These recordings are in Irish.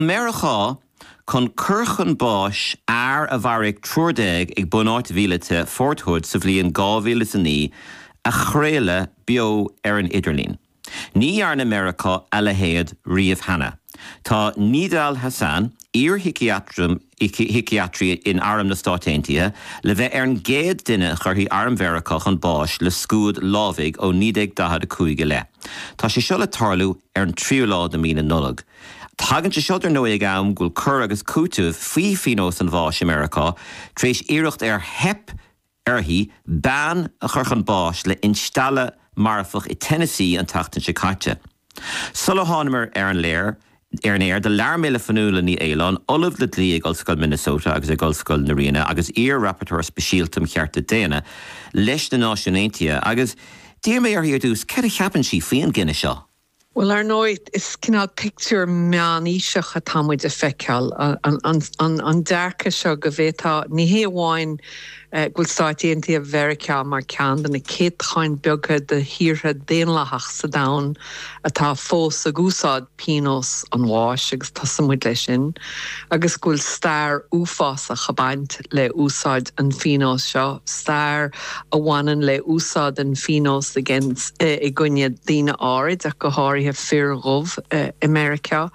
Meiriceá chun cur chun báis fhear a mharaigh triúr déag ag bunáit mhíleata Fort Hood sa bhliain 2009 a chraoladh beo ar an idirlíon. Ní dhearna Meiriceá a leithéad riamh cheana. Tá Nidal Hasan, iar-shíciatraí shíciatraí in Arm na Stáit Aontaithe, le bheith ar an gcéad duine a chuirfidh Arm Mheiriceá chun báis le scuad lámhaigh ó 1945 i leith. Tá sé seo le tarlú ar an tríú lá de mhí na Nollag. Tagann sé seo, dar ndóigh, ag am go bhfuil cur agus cúiteamh faoi phíonós an bháis i Meiriceá tar éis iarracht ar theip uirthi bean a chur chun báis le instealladh marfach i Tennessee an tseachtain seo caite. Sula thánamar ar an aer ar an aer do labhair mé le Fionnuala Ní Aoláin, Ollamh le Dlí ag Ollscoil Minnesota agus ag Ollscoil na Ríona agus iar-Rapporteur Speisialta um Chearta Daonna leis na Náisiúin Aontaithe agus d'iarr mé uirthi ar dtús céard a cheapann sí faoi an gcinneadh seo. Bhuel, ar ndóigh, is cineál pictiúr meánaoiseach atá muid a feiceáil, an dearcadh seo go bhféadfadh, ní hé amháin go bhfuil Stáit Aontaithe Mheiriceá mar ceann de na céatadáin beaga de thíortha daonlathach sa domhan atá fós ag úsáid pionós an bháis, agus tosaíonn muid leis sin. agus go bhfuil stair uafásach ag baint le úsáid an phíonóis seo, stair a bhaineann le úsáid an phíonóis against i gcoinne daoine áirid, ach go háirithe fir dhubh i Meiriceá.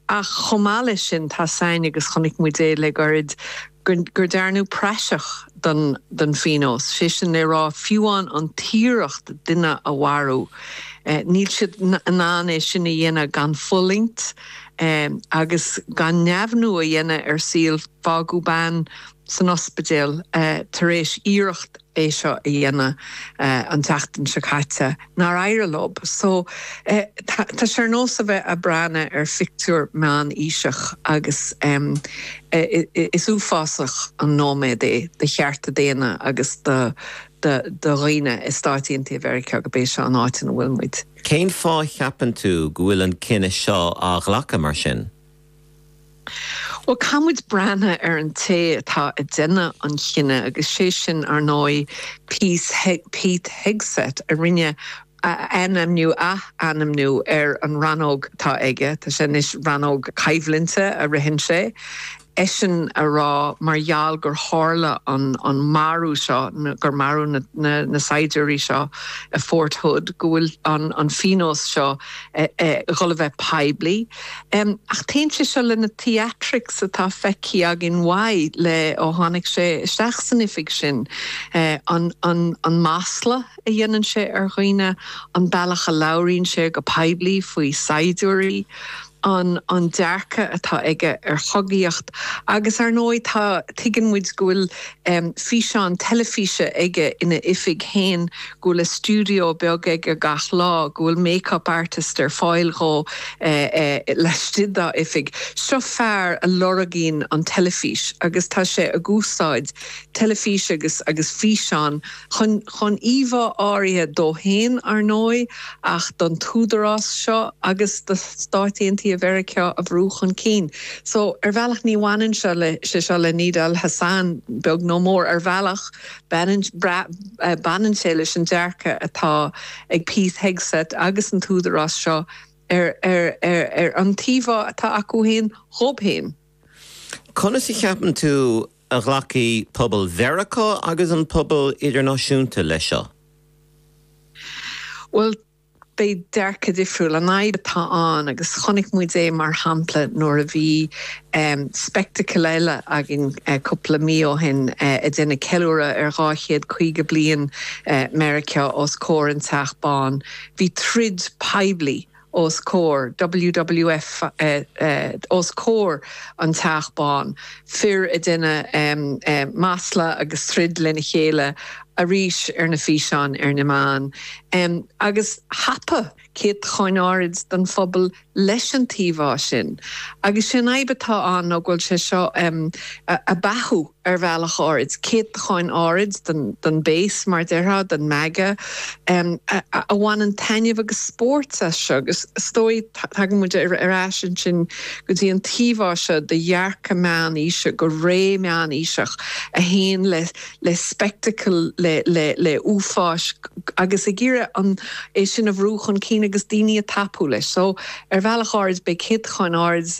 Ach chomh maith leis sin, tá sain, agus chonaic muid é le gairid, gur dearnadh praiseach de den phíonós, sé sin le rá fiúán an t-iarracht duine a mharú. Níl siad in ann é sin a dhéanamh gan fulaingt agus gan neamhniú a dhéanamh ar saol. Fágadh bean san ospidéal tar éis iarracht é seo a dhéanamh an tseachtain seo caite nár éirigh leo. So, tá sé ar nós a bheith a' breathna ar phictiúr meán-aoiseach agus is uafásach an nóiméad é do chearta daonna agus do do dhaoine i Stáit Aontaithe Mheiriceá gob é seo an áit ina bhfuil muid. Cén fáth a cheapann tú go bhfuil an cinneadh seo á ghlacadh mar sin? Bhuel, caithfimid breathna ar an té atá a déanamh an chinneadh agus sé sin, ar ndóigh, Pete Hegseth a rinne ath-ainmniú, ath-ainmniú, ar an rannóg atá aige, tá sé anois rannóg coimhlinte a ritheann sé, eisean a rá mar gheall gur tharla an marú seo, gur maraíodh na saighdiúirí seo i Fort Hood, go bhfuil an phíonós seo a dhul a bheith poiblí. Ach téann sé seo le na theatrics atá feicthe againn uaidh le ó tháinig sé isteach san oifig sin, an masla a dhéanann sé ar dhaoine, an bealach a labhraíonn sé go poiblí faoi saighdiúirí, an dearcadh atá aige ar chogaíocht. Agus ar ndóigh tá, tuigeann muid go bhfuil físeán teilifíse aige ina oifig féin go bhfuil a stiúideo beag aige gach lá, go bhfuil make-up artist ar fáil dhó laistigh dá oifig. Seo fear a lorgaíonn an teilifís agus tá sé ag úsáid teilifís agus agus físeán chun chun íomhá áirithe dó féin, ar ndóigh, ach don t-údarás seo agus do Stáit Aontaithe Mheiriceá a bhrú chun cinn. So, ar bhealach ní bhaineann seo, sé seo le Nidal Hasan, beag nó mór, ar bhealach, Baineann sé leis an dearcadh atá ag Pete Hegseth agus an tÚdarás seo ar an t-íomhá atá acu féin dhóibh féin. Conas a cheapann tú a ghlacfaidh pobal Mheiriceá agus an pobal idirnáisiúnta leis seo? Bhuel, Beidh dearcadh difriúil, an fhadhb atá ann, agus chonaic muid é mar shampla nuair a bhí spectacle eile againn cúpla mí ó shin ag déanamh ceiliúradh ar dhá chéad caoga bliain Meiriceá os comhair an Teach Bán. Bhí troid poiblí os comhair, WWF, os comhair an Teach Bán, fir ag déanamh masla agus troid lena chéile, arís ar na físeáin ar na meáin agus thapaigh céatadán áirid don phobal leis an t-íomhá sin. Agus sé an fhadhb atá ann ná go bhfuil sé seo ag beathú ar bhealach áirid, céatadán áirid don base, mar déarfá, don MAGA, a bhaineann taitneamh agus spóirt as seo. Agus is dóigh, tagann muid ar ais ansin go dtí an t-íomhá seo de dhearcadh meánaoiseach, go ré meánaoiseach a théann le le speicteacal, le, le, le uafáis, agus ag iarraidh an, é sin a bhrú chun cinn agus daoine a tapú leis. So, ar bhealach áirid, beidh céatadán áirid